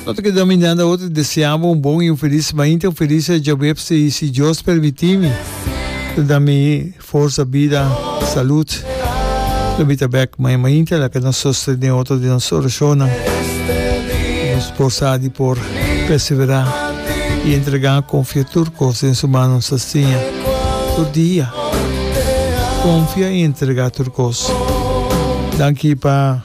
No ta keda minanda otro y desea bo un bon y un feliz mainta, un feliz Jobeb si si Dios permiti mi ta da mi forsa, bida, salud lo mi ta bek maña mainta laga nos sostene otro den nos oracionnan y nos porsa di por persevera y entrega confia tur cos den su manos asina tur dia confia y entrega tur cos danki pa.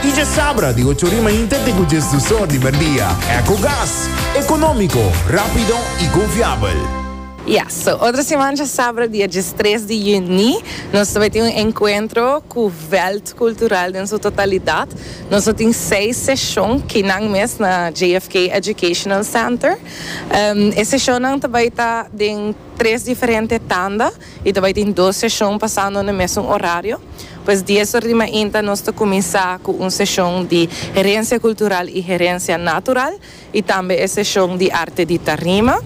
Y dje sabra di ocho ori mainta te cu djes dus or di merdia. Ecogas. Economico, rapido y confiabel. Ya, so otro siman dje sabra dia djes tres di juni nos ta bai tin un encuentro cu veld cultural den su totalidad. Nos lo tin seis seshon kinan mes na JFK Educational Center. E seshonnan ta bai ta den tres diferente tanda. y ta bai tin dos seshon pasando na mesun orario, pues dies or di mainta nos ta cuminsa cu un seshon di Herencia Cultural y Herencia Natural y tambe e seshon di Arte di Tarima.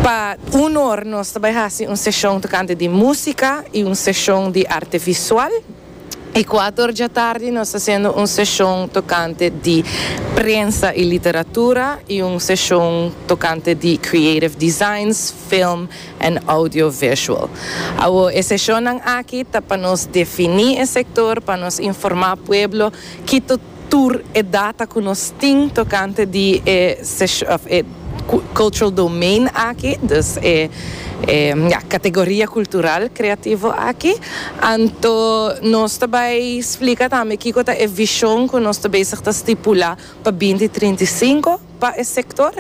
Pa uno or nos ta bai haci un seshon tocante di musica y un seshon di Arte Visual. E kuator dja tardi nos ta hasiendo un seshon tokante di prensa i literatura i un seshon tokante di creative designs, film en audiovisual. Awor e seshonnan aki ta pa nos defini e sektor, pa nos informá pueblo ki. tur e data cu nos tin tocante di e sesho, of e cultural domain aki, dus e e, ja, categoria cultural creativo aki. Anto nos ta bay splica tambe kico ta e vision cu nos ta bezig ta stipula pa binti trinta i cinco. pa e sector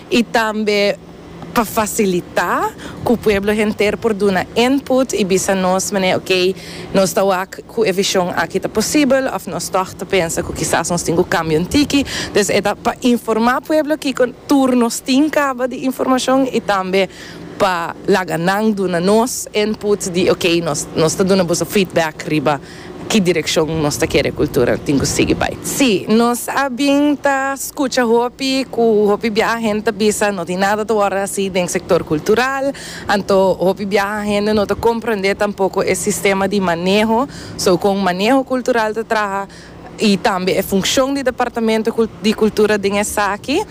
y tambe pa facilita cu pueblo henter por duna input y bisa nos mane ok nos ta wak cu e vision aki ta posibel of nos tog ta pensa cu kisas nos tin cu cambia un tiki dus e ta pa informa pueblo kico tur nos tin caba di informacion y tambe pa laga nan duna nos input di ok nos nos ta duna boso feedback riba Ki direkshon nos ta kere kultura tin ku sigui bai? Sí, nos a bin ta skucha hopi ku hopi biaha hende ta bisa, no tin nada ta wòrdu hasi den sektor kultural. Anto hopi biaha hende no ta komprendé tampoko e sistema di maneho, so kon maneho kultural ta traha i tambe e funshon di departamento di kultura den esaki.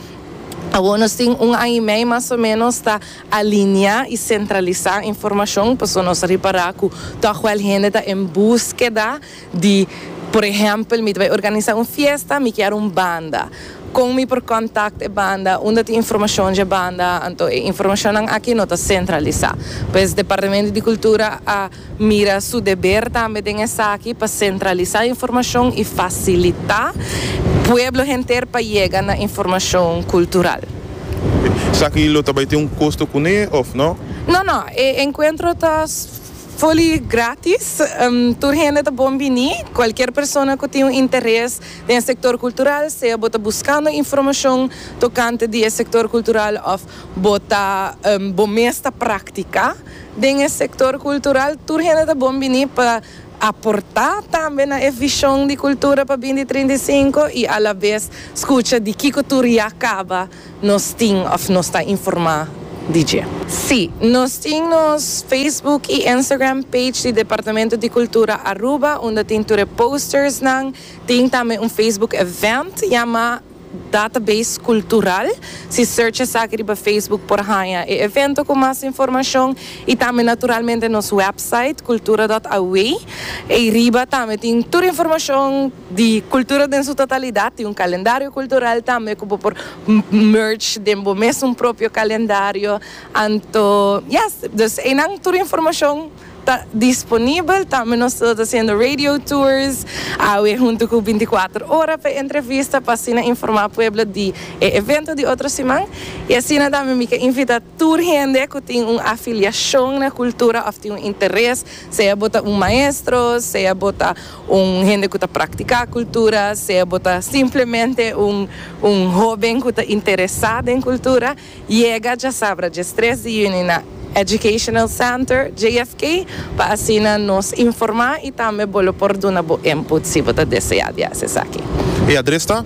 Awor nos tin un aña i mei mas o menos ta. Alineá i sentralisá informashon pasobra nos a ripará ku tòg wèl hende ta en búskeda di, Por ehèmpel, mi ta bai organisá un fiesta, mi kier un banda. Kon mi por kòntakt e banda? Unda tin informashon dje banda? Anto e informashonnan akí no ta sentralisá. Pues Departamento di Kultura a. mira su deber tambe den esaki pa sentralisa informashon i fasilita pueblo henter pa yega na informashon kultural. Esaki lo ta bai tin un kosto kuné òf no? No, no. E enkuentro ta fully grátis. Tur hende ta bon bini. Kualkier persona ku tin un interes den e sektor kultural, sea bo ta buskando informashon tokante di e sektor kultural òf bo ta bo mes ta praktika, Den e sektor kultural tur hende ta bon bini pa aportá tambe na e vishon di kultura pa binti trinta i sinku i alabes skucha di kiko tur ya kaba nos tin òf nos ta informá di dje. Sí, nos tin nos Facebook i Instagram page di Departamento di Kultura Aruba unda tin tur e postersnan, tin tambe un Facebook event yamá. Database Cultural. Si search esaki riba Facebook por haña e evento cu mas informacion y tambe naturalmente nos website cultura.aw. Eyriba tambe tin tur informacion di Cultura den su totalidad, tin un calendario cultural tambe cu bo por merge den bo mes un propio calendario. Anto yes, dus eynan tur informacion. Ta disponibel, tambe nos ta hasiendo radio tours awe hunto cu binticuater ora pa e entrevista pa asina informa pueblo di e evento di otro siman. Y asina tambe mi ta invita tur hende cu tin un afiliacion na cultura of tin un interes, sea bo ta un maestro, sea bo ta un hende cu ta practica cultura, sea bo ta simplemente un un hoben cu ta interesa den cultura, Yega djasabra dje stres di juni na Educational Center, JFK, pa asina nos informá i tambe bo lo por duna bo input si bo ta deseá di hasi esaki. E adres ta.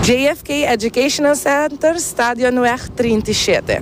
JFK Educational Center, Stadionweg trinta i shete.